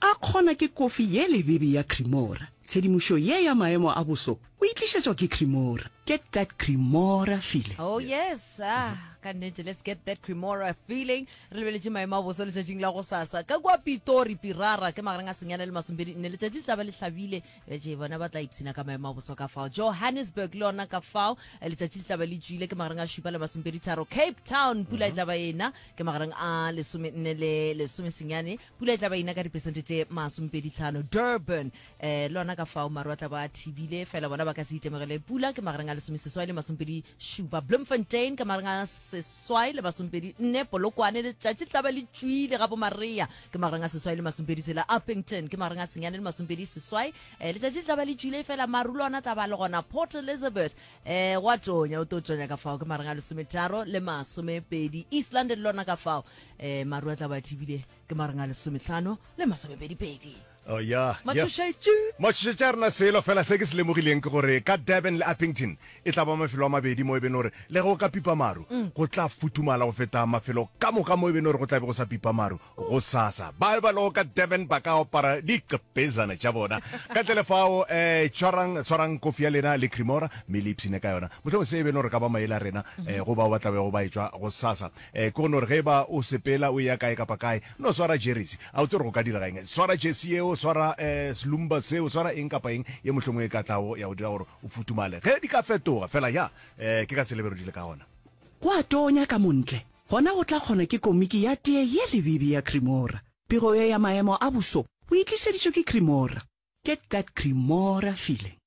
A kgona ke kofi ye lebebe ya Cremora. Tshedimošo ye ya maemo a boso o e tlišetšwa ke Cremora. Get that Cremora feeling. Oh yes, ah, ka nnete, let's get that Cremora feeling. Re lebeletše maemo a boso letšatšing la go sasa. Ka kua Pitori, Pirara, ke magareng a senyana le masompedi nne. Letšatši le tla ba le hlabile. Betše bona ba tla ipshina ka maemo a boso ka fao. Johannesburg le yona ka fao. Letšatši le tla ba le tšwile ke magareng a šupa le masompedi tharo. Cape Town, pula e tla ba ena ke magareng a lesome nne le lesome senyane. Pula e tla ba ina ka dipersente tše masomepedi tlhano. Durban, eh, lona ka fao maru a tla ba a thibile, fela bona ba ka se itemogele pula ke magareng a lesomeseswai le masomepedi šupa. Bloemfontein ka magareng a seswai le masomepedi nne. Polokwane letšatši le tla ba le tšwile ga bomaria ke magareng a seswai le masomepedi tsela. Upington ke magareng a senyane le masomepedi seswai. Eh, letšatši le tla ba le tšwile fela maru le ona tla ba le gona. Port Elizabeth, eh, gwa tšonya, o tlo tšonya ka fao ke magareng a lesometharo le masomepedi. East London lona ka fao um maru a tla ba thibile ke mareng a lesometlhano le masomepedipedi oh ya matšhošetše matšhošetše a rena selo fela se ke se lemogileng ke gore ka durban le uppington e tla ba mafelo a mabedi mo e beno gore le go ka pipa maru mm. go tla futumala go feta mafelo ka moka mo e beno gore go tla be go sa pipa maru go sasa ba ba lego ka durban ba ka opara diqepezana tša bona ka tlele fao um tshwarang tshwarang kofi ya lena le cremora mme le ipshine ka yona motlhong se e beno gore ka ba maele a rena um go bao ba tlabego ba e tswa go sasa Eh, ke go no re ge ba o sepela o eya kae kapa kae, no swara jeresi. A o tsebe gore go ka direga eng? Swara jersi yeo, swara eh, selumba seo, swara eng kapa eng ye mohlomong e ka tlago ya go dira gore o futumale. Ge di ka fetoga, fela ya, eh, ke ka selebero di le ka gona. Go a tonya ka montle, gona go tla kgona ke komiki ya tee ye lebibi ya Cremora. Pego ye ya maemo a boso o e tlišeditšwe ke Cremora. Get that Cremora feeling.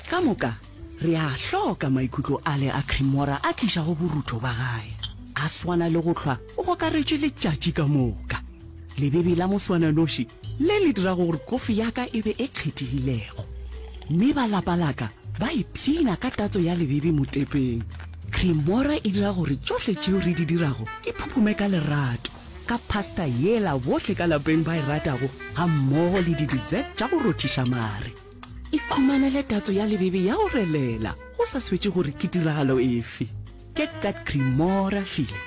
Ka moka, re a hloka maikutlo ale a Cremora a tlišago borutho ba gae. A swana le go hlwa o gokaretše letšatši ka moka. Lebebi la moswananoši le le dirago gore kofi ya ka e be e kgethegilego. Mme ba lapa la ka ba ipshina ka tatso ya lebebi motepeng. Cremora e dira gore tšohle tšeo re di dirago di phuphume ka lerato. ka pasta yela bohle ka lapeng ba e ratago gammogo le di-dessert tša go rothiša mare. Ikhumanele tatso ya lebebe ya go relela go sa swetše gore ke tiragalo efe. Get that Cremora feeling.